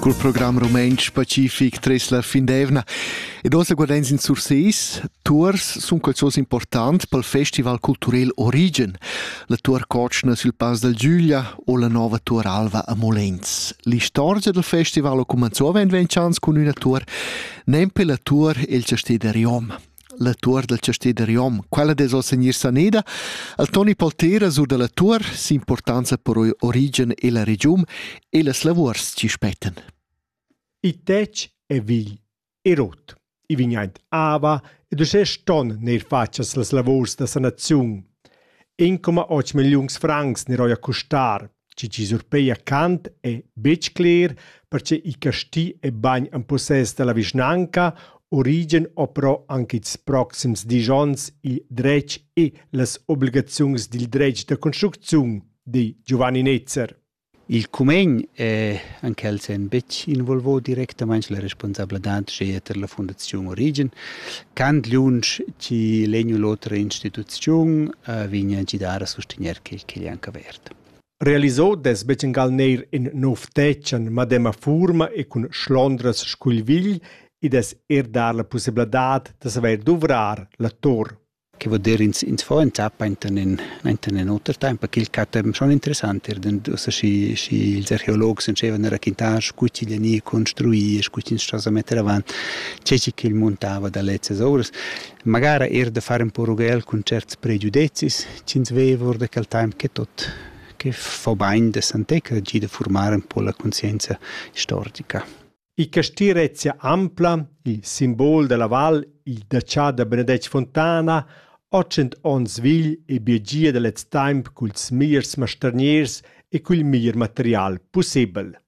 Cul program rumantsch pacific tres la fin d'eivna ed oz guardens in Surseis, tuors sun qualzos important pel festival culturel Origen, la tuor cotschna sül Pass dal Giuglia o la nova tuor alva a Molens. L'istorgia del festival ho cumanzò avend ventg ans cun üna tuor, nempe la tuor el chastè da Riom. la tuor dal chastè da Riom. Quella dess oz gnir saneda. Al Toni Poltera sur da la tuor s'importanza per origen e la regiun e las lavurs chi spettan. I tec è vigl e rot. I vignaint ava ed uschè ston neir fatschas las lavurs da sanaziun. 1,8 milliuns francs ne roia custar Tgi chi surpeia Kant è betg cler, perche il casti è bagn en possess da la vischnanca, origen ho però anche ils proxims dis ons il dretg e las obligaziuns dil dretg da construcziun, di Giovanni Netzer. Il cumegn è en quel sen betg involvò directamain la responsabladad sche eter la Fundaziun Origen. Kant liunsch chi legnu l'otra instituziun uh, vigna gidar a sostegner quel che gli anca ver. Realisau dess bugen neir in nov tetg en medema fuorma e cun schlondras scugl vigl ed dess er dar la pussebladad da saver duvrar la tor. Che vuol dir ins, ins fa in tappa enten in, enten in oter temps, perché il catem schon interessant er, denn ussa schi, schi ils archeologs entschevan a raquintar scu chi vegni construì, scu chi ins sta a metter avant, tge che il montava da lezzas ovras. magara er da far in po rughel cun certs pregiudezis ch'ins veva or da quel temps che tot che fa bain de santecca gi da formar un po la conscienza istorica. Il castì Rezia Ampla, il simbol della val, il daccià da Benedetg Fontana, 800 onns vegl e biegia da lez temps culs miers masterniers e cul mier material pussebel.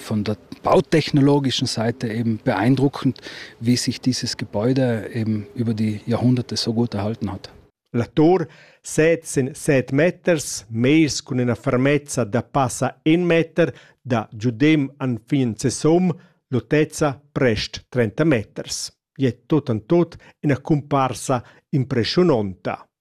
von der bautechnologischen Seite eben beeindruckend, wie sich dieses Gebäude eben über die Jahrhunderte so gut erhalten hat. La tur setzen 7 meters, meis cun ina fermezza da passa 1 meter, da giudem an fin sesum, lotezza prest 30 meters. Je tot an tot ina cumparsa impressiononta.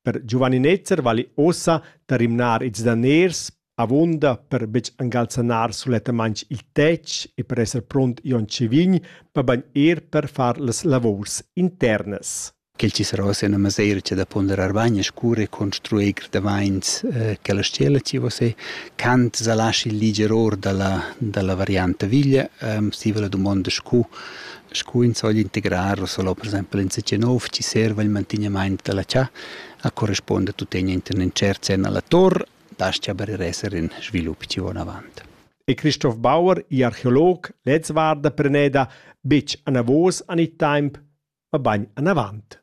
Per Giovanni Netzer vali ussa da rimnar ils daners avunda per betg angalzanar sulettamain il tetg e per esser pront Jon Cevign, mabain er per far las lavurs internas. Quel ci sarà sia una mesira che da ponderar bain e scure construir gradaint eh, che la stella ci vo se cant sa lasci liger or dalla dalla variante villa ehm um, stiva la domanda scu scu ins vogl integrar o solo per exaimpel insatge nov chi serva il mantignamaint da la chà, a correspuonda tutegna inter ün tschert sen a la tor, das-cha aber er esser in svilup chi va anavant. E Christoph Bauer, archeolog, lez varda preneda betg anavos an il temp, ma bagn anavant.